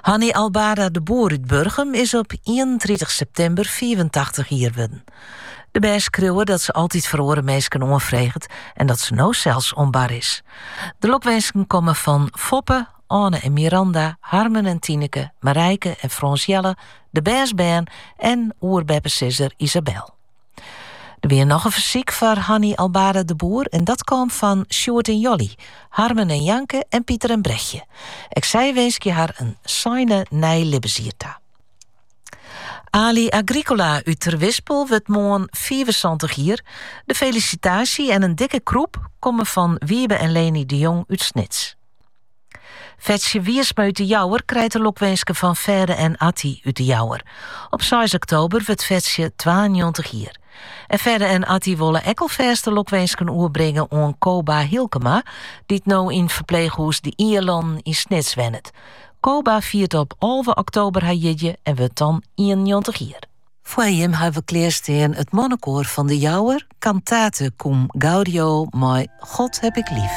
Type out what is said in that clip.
Hanny Albada de Boer út Burgum is op 30 septimber 84 jier wurden. De bern skriuwe dat se altyd foar oare minsken oanfreget en dat se no sels oan bar is. De lokwinsken komme fan Foppe, Oane en Miranda, Harmen en Tineke, Marijke en Frans Jelle, de bernsbern en oerbeppesizzer Isabel. Der wie noch in fersyk foar Hanny Albada de Boer en dat kaam fan Sjoerd en Jolly, Harmen en Janke en Pieter en Brechtje. Ek sy winskje har in seine nij libbensjier ta. Ali Agricola út Terwispel wurdt moarn 75 jier. De felisitaasje en in dikke krûp komme fan Wiebe en Leni de Jong út Snits. Fetsje Wiersma út de Jouwer krijt de lokwinsken fan Fêde en Atti út de Jouwer. Op 6 oktober wurdt Fetsje 92 jier. En Fêde en Atti wolle ek alfêst de lokwinsken oerbringe oan Koba Hilkema, dy't no yn ferpleechhûs De Ielânen yn Snits wennet. Koba fiert op 11 oktober har jierdei en wurdt dan 91 jier. Foar jim ha we klearstean it mannekoar fan De Jouwer, Cantate cum Gaudio mei God heb ik lief.